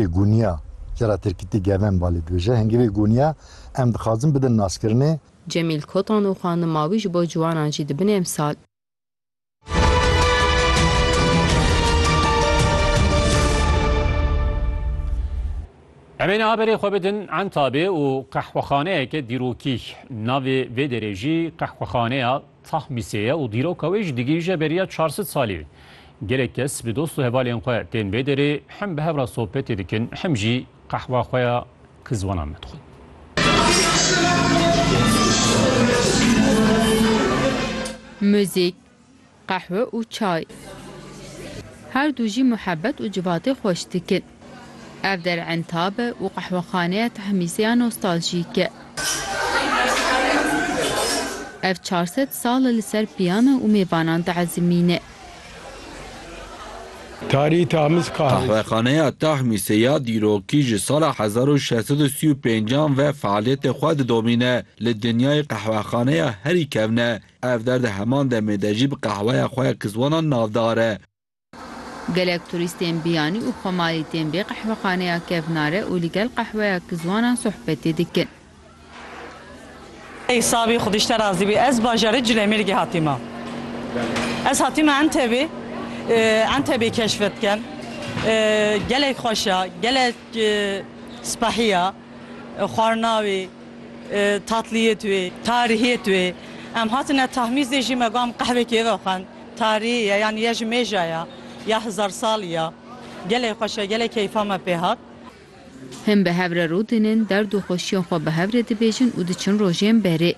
Vê guniya ke ra Tirkîtî Geven Balê dibêje, Hingîvê guniya em dixwazin bidin naskirinê. Cemîl Kotan û xwendin ma wî ji bo ciwanan jî dibin emsal. Em ê niha berê xwe bidin Entabê û qehwexaneyeke dîrokî. Navê vê derê jî Qehwexaneya Tahmîsê ye û dîroka wê jî digihîje beriya çar sed salî. Gelek kes bi dost û hevalên xwe tên vê derê, him bi hev re sohbetê dikin, him jî qehwa xwe ya ku ziwanan me dixwin. Muzîk, qehwe û çay. Her du jî muhebet û civatê xweş dikin. Ev der entab û qehwexaneya Tahmîseya nostaljîk. Ev çar sed sal li ser piyan û mêvanan diezimîne. Tarî Tahmiz Qahwe. Qehwexaneya Tahmîse ya dîrokî ji sala hezar û şeş sed û sî û pênc an ve fealiyetê xwe didomîne. Li dinyayê qehwexaneya herî kevn e. Ev der di heman demê de jî bi qehweya xwe ya kizwanan navdar e. Gelek turîstên biyanî û xwemalî tên vê qehwexaneya kevnare û li gel qehweya kizwanan sohbetê dikin. Ey Sabî xwedî ji te razî bî ez bajarê Cilemêrgê hatîme. Ez hatîme Entebê, Entebê keşf dikim. Gelek xweş e, gelek spehî ye. Xwarina wê, tatliyê wê, tarihiyê wê. Em hatine Tahmîzê jî me got em qehwekê ve xwend. Tarî ye yan ye ji mêja ye ya hizar salî ye. Gelê xweş e, gelê keyfa me pê hat. Hin bi hev re rû dinin, derd û xweşiyên xwe bi hev re dibêjin û diçin rojên berê.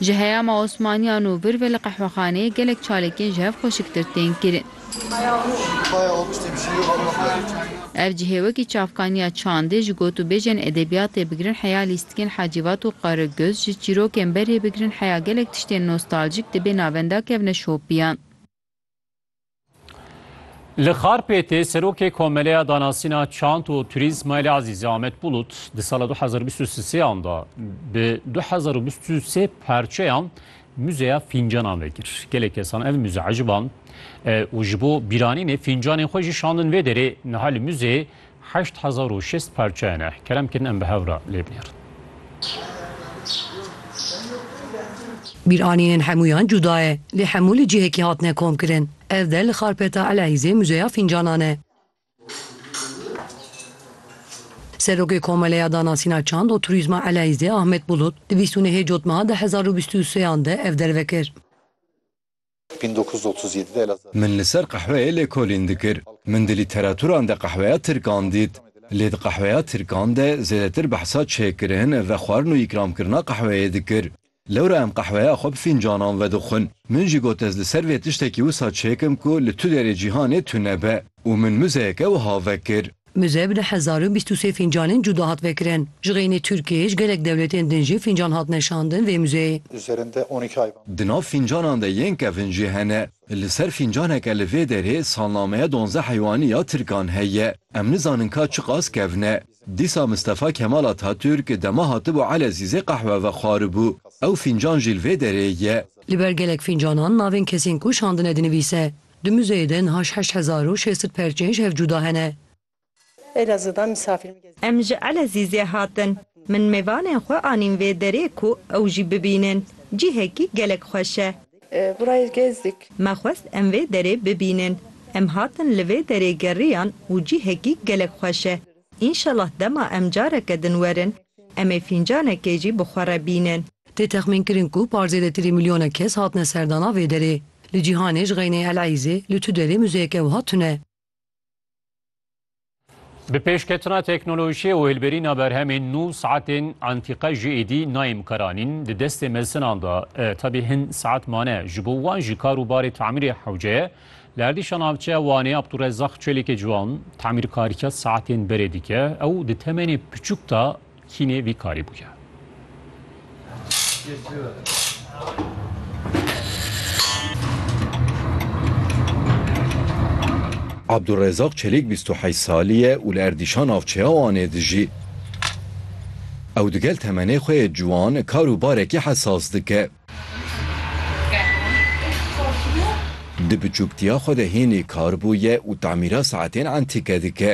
Ji heyama Osmaniyan û vir ve li qehwexaneyê gelek çalêkên ji hev xweşiktir tên kirin. Ev cihê wekî çavkaniya çandê ji gotûbêjên edebiyatê bigirin heya lîstikên Hacivat û Qaragöz, ji çîrokên berê bigirin heya gelek tiştên nostaljîk di bê navenda kevne şopiyan. Li Xarpêtê Serokê Komeleya Danasîna Çand û Turîzma li Azîzê Amed Bulut di sala du hezar û bîst û sê an de bi du hezar û bîst û sê parçeyan Muzeya fîncanan vekir. Gelek kesan ev muze eciband û ji bo bîranînê fîncanên xwe jî şandin vê derê. Niha li muzeyê heşt hezar û şêst parçe hene. Kerem kirin em bi hev re lê binêrin. Bîranînên hemûyan cuda ye, lê hemû li cihekî hatine komkirin. Ev der li Xarpeta Eleîzê muzeya fîncanan e. Serokê Komeleya Danasîna Çand û Turîzma Eleyzê Ahmet Bulut di bîst û nehê cotmeha di hezar û bîst û seyan de ev derve kir. Min li ser qehweyê lêkolîn dikir. Min di lîteraturan de qehweya tirkan dît. Lê di qehweya tirkan de zêdetir behsa çêkirin, vexwarin û îkramkirina qehweyê dikir. Lewra em qehweya xwe bi fîncanan vedixwin. Min jî got ez li ser vê tiştekî wisa çêkim ku li tu derê cîhanê tune be û min muzeyeke wiha vekir. Muze bi du hezar û bîst û sê fîncanên cuda hat vekirin. Ji xeynî Tirkiyê ji gelek dewletên din jî fîncan hatine şandin vê muzeyê. Di nav fîncanan de yên kevin jî hene. Li ser fîncaneke li vê derê salnameya donzdeh heywanî ya Tirkan heye. Em nizanin ka çiqas kevin e. Dîsa Mistefa Kemal Atatürk dema hatibû Elezîzê qehwe vexwaribû. Ew fîncan jî li vê derê ye. Li ber gelek fîncanan navên kesên ku şandine dinivîse. Di muzeyê de niha ji heşt hezar û şêst sed perçên ji hev cuda hene. Em ji Elezîzê hatin. Min mêvanên xwe anîn vê derê ku ew jî bibînin. Cihekî gelek xweş e. Burayê gezdik. Me xwest em vê derê bibînin. Em hatin li vê derê geriyan û cihekî gelek xweş e. Înşellah dema em careke din werin, em ê fîncanekê jî bi xwe re bînin. Tê texmînkirin ku par zêdetirî milyonek kes hatine serdana vê derê. Li cîhanê ji xeynê El Eîzê li tu derê muzeyeke wiha tune. Bi pêşketina teknolojiyê û hilberîna berhemên nû saetên antîqe jî êdî nayê mikaranîn di destê mezinan de tevî hin saet mane ji bo wan jî kar û barê tamîrê hewceye li erdîşa navçeya Wanê Abdulrezaq Çelîkê Ciwan tamîrkarîya saetên berê dike ew di temenê piçûk de Kînê vî karî bûye. Abdurezaq Çelîk bîst û heyş salî ye û li Erdîşa navçeya Wanê dijî. Ew digel temenê xwe yê ciwan kar û barekî hesas dike. Di biçûktiya xwe de hênî kar bûye û temîra saetên entîke dike.